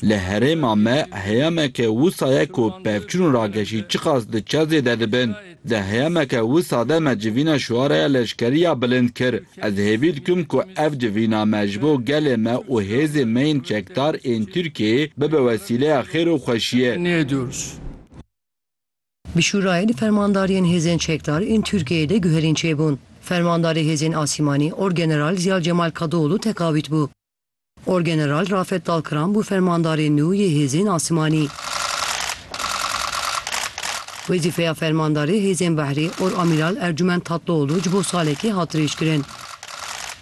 Li herêma me heyameke wisa ye ku pevçûn û rageşî çiqas di çar zêde dibin. Di heyameke wisa de me civîna şuaraya leşkerî ya bilind kir. Ez hêvî dikim ku ev civîna me ji bo gelê me û hêzên me yên çekdar ên Tirkiyeyê bibe wesîleya xêr û xweşiyê. Bi Şûrayên Fermandariyên Hêzên Çekdar ên Tirkiyeyê de guherîn çêbûn. Fermandarê Hêzên Asîmanî Orgeneral Ziya Cemal Kadıoğlu teqavît bû. Orgeneral Rafet Dalkıran bû fermandarê nû yê Hêzên Asîmanî. Wezîfeya Fermandarê Hêzên Behrê Oramiral Ercûment Tatlıoğlu ji bo salekê hat dirêjkirin.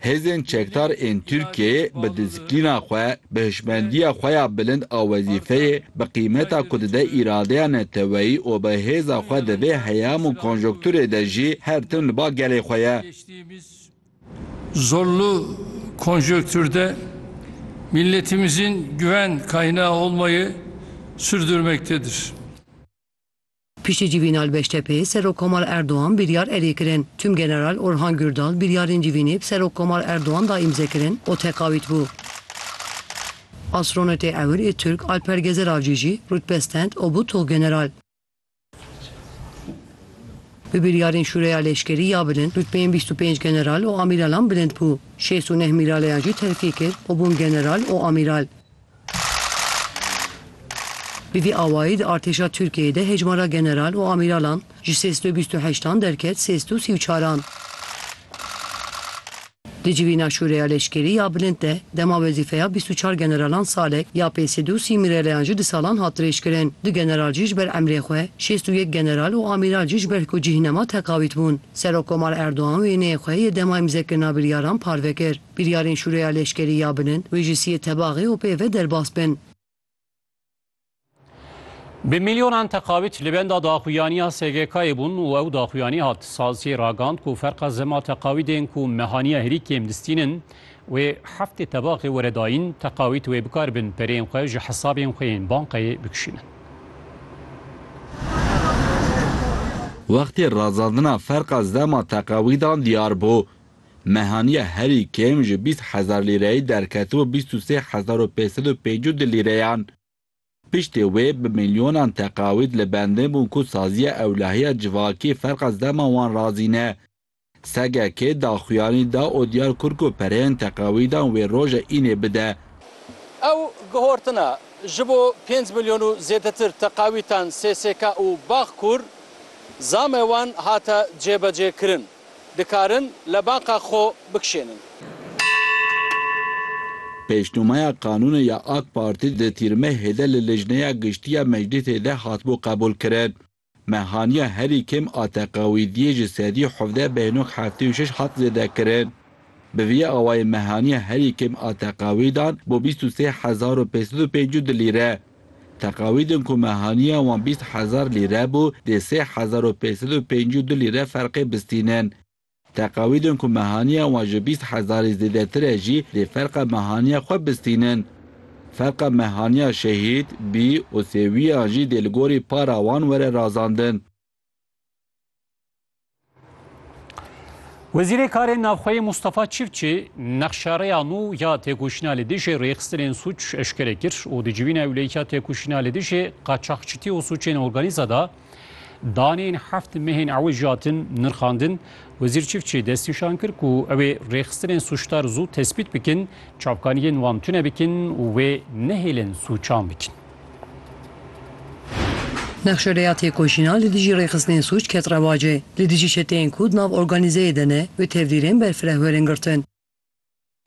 Hêzên çekdar ên Tirkiyeyê bi disiplîna xwe, bi hişmendiya xwe ya bilind a wezîfeyê, bi qîmeta ku dide îradeya neteweyî û bi hêza xwe di vê heyam û konjonkturê de jî her tim li ba gelê xwe ye. Zorlu konjonkturde milletimizin güven kaynağı olmayı sürdürmektedir. Piştî Cîvînal Beştepê, Serok Komal Erdogan biryar erê kirin. Tûm General Orhan Gurdal biryarên civînê bi Serok Komal Erdogan da îmze kirin û teqawît bû. Astronotê ewil ê Tirk Alper Gezer Avcî jî rutbe stend û bû Tuxgeneral. Bi biryarên Şûreya Leşkerî ya Bilind rutbeyên bîst û pênc general û amîralan bilind bû. Şêst û neh mîraleyan jî terfî kir û bûn general û amîral. Bi vî awayî di artêşa Tirkiyeyê de hejmara general û amîralan ji sê sed û bîst û heşt an derket sê sed û sî û çar an. Di civîna Şûreya Leşkerî ya Bilind de dema wezîfeya bîst û çar generalan salek ya pê sed û sî mîreleyan ji di salan hat dirêjkirin. Du general jî ji ber emrê xwe, şêst û yek general û amîral jî ji ber ku cîhnema teqawît bûn. Serokkomar Erdogan wêneyê xwe yê dema îmzekirina biryaran parve kir. Biryarên şûreya leşkerî ya bin in, wê ji siyê tebaxê û pê ve derbas bin. Bi milyonan teqavît li benda daxuyaniya SGK'ê bûn û ew daxuyanî hat. Sazcî ragand ku ferqa zema teqavîdên ku mehaniya herî kêm distînin wê heftê tebaxê were dayîn, teqavît wê bikar bin pereyên xwe ji hesabên xwe yên banqeyê bikişînin. Wextê razandina ferqa zema teqavîdan diyar bû, Mehaniya herî kêm ji bîst hezar lîreyê derketibû bîst û sê hezar û pênc sed û pêncî û du lîreyan. Piştî wê bi milyonan teqawîd li bendê bûn ku saziya ewlehiya civakî ferqa zema wan razîne. Segekê daxuyanî da û diyar kir ku pereyên teqawîdan wê roja înê bide. Ew guhortina ji bo pênc milyon û zêdetir teqawîtan SSK û Bağkur zame wan hate cêbecêkirin. Dikarin lebanqa xwe bikişênin. Pêşnûmaya qanûnê ya AK Partî di tîrmehê de li Lijneya Giştî ya Meclîsê de hatibû qebûlkirin. Me haniya herî kêm a teqewîdiyê ji sedî û hevdeh bêhnok heftê û şeş hat zêdekirin. Bi vî awayî me haniya herî kêm a teqewîdan bo bîst û sê hezar û pênc sed û pêncî du lîre. Teqawîdên ku me haniya wan bîst hezar lîre bû, dê sê hezar û pênc sed û pêncî û du lîre ferqê bistînin. Teqawîdên ku me haniya wan ji bîst hezarî zêdetir e jî dê ferqa mehaniya xwe bistînin. Ferqa mehaniya şehîd, bî û sêwîyan jî dê li gorî para wan were razandin. Wezîrê Karên Navxweyê Mustafa Çiftçi nexşareya nû ya têkoşîna li dijî rêxistinên sûc eşkere kir û di civîna ewleyikiya têkoşîna li dijî qaçaxçitî û sûcên organîze de daneyên heft mehên ewijî hatin nirxandin. Wezîr Çiftçi destnîşan kir ku ew ê rêxistinên sûcdar zû tespît bikin, çavkaniyên wan tune bikin û wê nehêlin sûcan bikin. Nexşereya têkoşîna li dijî rêxistinên sûc ket rewacê. Li dijî çeteyên ku di nav organîzeyê de ne wê tevdîrên berfireh werin girtin.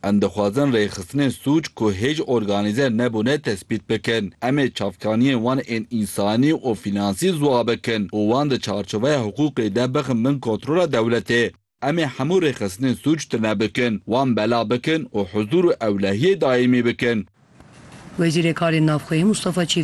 Em dixwazin rêxistinên sûc ku hêj organîze nebûne tespît bikin. Em ê çavkaniyên wan ên însanî û fînansî ziwa bikin û wan di çarçoveya hiqûqê de bixin bin kontrola dewletê. Em ê hemû rêxistinên sûc tune bikin, wan bela bikin û huzûr û ewlehiyê daîmî bikin. Wezîrê Karên Navxweyî Mustafa Çîftî.